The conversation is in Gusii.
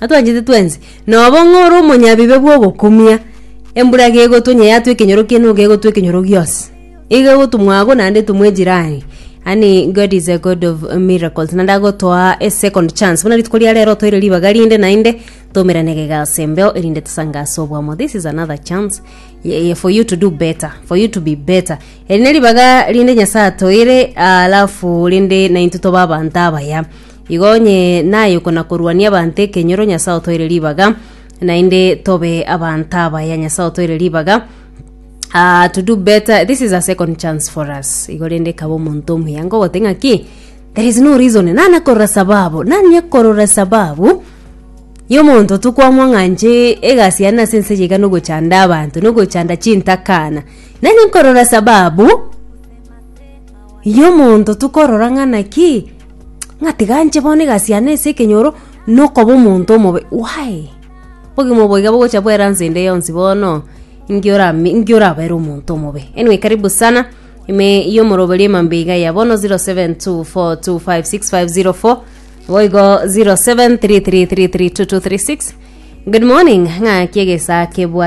Atwanchete twensi. Nobo ng'a ore omonyabibe bw'ogokumia, embura iga egotwa onye yatwa ekenyoro kiane iga egotwa ekenyoro gionsi. Iga egotwa mwago naende etumwe ejirani. Yaani God is a God of miracles naende agotoa a second chance. Buna rituko ria rero otoire ribaga rinde naende twaumerane igaiga ase embeo erinde tosange ase obomo. This is another chance ye for you to do better, for you to be better. Eri neribaga rinde Nyasaye atoire alafu rinde naintwe tobe abanto abaya. Igo onye nayuko na koruania abanto ekenyoro, Nyasae otoire ribaga, naende tobe abanto abaya, Nyasae otoire ribaga. Ah, to do better, this is a second chance for us. Igo rende kaba omonto omuya ngogote ng'aki, there is no reason, nana korora sababu, nanye korora sababu, yomonto tokwamwa ng'anche egasi yane ase ense yaiga nogochanda abanto nogochanda chintakana nanye nkorora sababu Iye omonto tokorora ng'a naki ng'a tiga nche bono egasiana ase ekenyoro nokoba omonto omobe why? Obogima obo iga bogocha bwera nse ende yonsi bono ninki orame ninki orabere omonto omobe. Anyway karibu sana ime ya omoroberio emambe iga ya bono 0724256504 boigo 0733332236 good morning ng'aki egesaa kebwate.